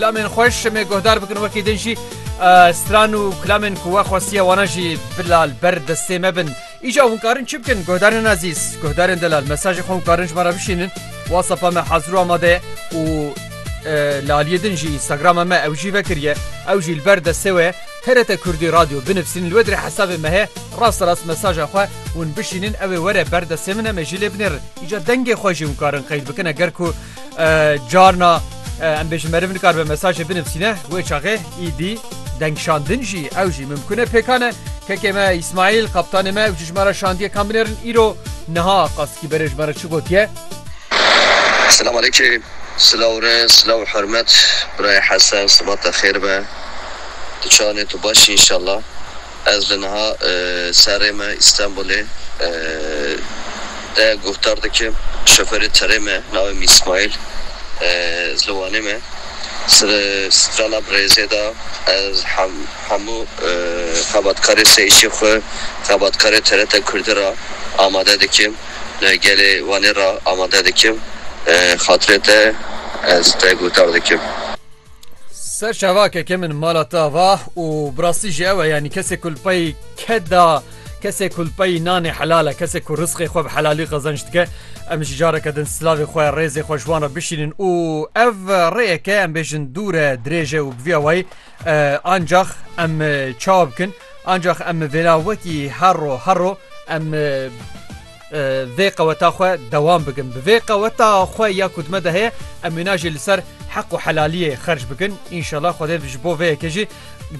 Kilamên xwe şimê guhdar bikin wekî din jî stran û kilamên ku we xwestiye wana jî bila li ber destê me bin. Îja hûn karin çi bikin guhdarên ezîz, guhdarên delal mesajê xwe hûn karin ji me re bişînin. WhatsApp me hazir û amade ye û li aliyê din jî Instagrama me ew jî vekiriye. Ew jî li ber destê we ye. TRT Kurdî Radyo binivîsînin li we dirê hesabê me heye rast rast mesaja xwe hûn bişînin ew ê were ber destê min em ê jî lê binêrin. Îja dengê xwe jî hûn karin qeyd bikin eger ku Carna em bêjin meriv nikar be mesajê binivîne wê çaxê îdî dengşandin jî ew jî mimkune pêkane kekê me İsmail kaptanê me ew jî ji me re şandiye kan binêrin îro niha qaskî berê ji me re çi gotiye Selam aleyke silaw re silaw hurmet birayê hesen sibata xêr be tu çawanê tu baş î inşallah. Ez li niha serê me Îstenbulê de guhdar dikim. Şoferê tirê me navê min Îsmaîl ez li Wanê me. Li strana Birêzê de ez hemû xebatkarê sê îşê xwe xebatkarê TRT Kurdî re amade dikim. Li gelê Wanê re amade dikim. Xatirê te ez te guhdar dikim. Ser şevakeke min mala te ava û bi rastî jî ew e yanî kesê ku li pey ke da kesê ku li pey nanê helal e kesê ku rizqê xwe bi helalî qezenc dike em jî careke din silavê xwe rêzê xwe ji wan re bişînin û ev rêyeke em bêjin dûr e dirêj e û bi vîya wayî ancax em çawa bikin ancax em vêna wekî herro herro em Vê qeweta xwe dewam bikin. Bi vê qeweta xwe ya ku dime de heye em wîna jî li ser heq û helaliyê xerc bikin. Înşela Xwedê ji bo vê yekê jî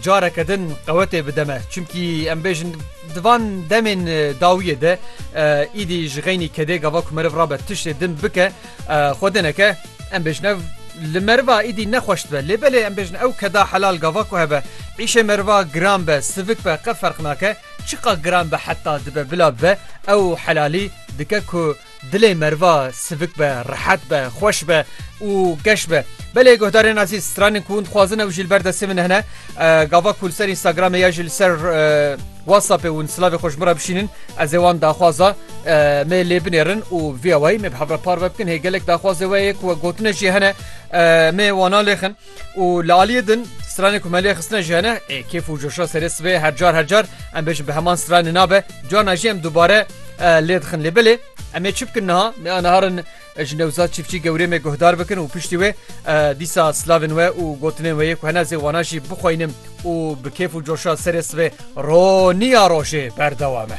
careke din qewetê bide me. Çimkî em bêjin di van demên dawiyê de îdî ji xeynî kedê gava ku meriv rabe tiştê din bike xwe din eke em bêjin ev li meriva îdî nexweş dibe. Lê belê em bêjin ew keda helal gava ku hebe. Îşê meriva giran be, sivik be qe ferq nake. Çiqa giran be heta dibe bila bibe ew helalî dike ku dilê meriva sivik be, rehet be, xweş be û geş be. Belê guhdarên ezîz, stranên ku hûn dixwazin ew jî li ber destê min hene. Gava ku li ser Instagramê ya jî li ser WhatsAppê hûn silavê xwe ji min re bişînin ez ê wan daxwaza me lê binêrin û via wayî me bi hev re parve bikin. Hê gelek daxwazê we ye ku we gotine jî hene me wana lêxin. û li aliyê din stranê ku me lê xistine ji hene ê kêf û coşa serê sibê her car her car em bêjin bi heman stranê nabe cana jî em dubare lê dixin lê bilê em ê çi bikin niha me anaharin ji newzat çiftçî gewrê me guhdar bikin û piştî wê dîsa slavên we û gotinên wê yê ku hene zê wana jî bixweynim û bi kêf û coşa serê sibê roniya rojê berdewame.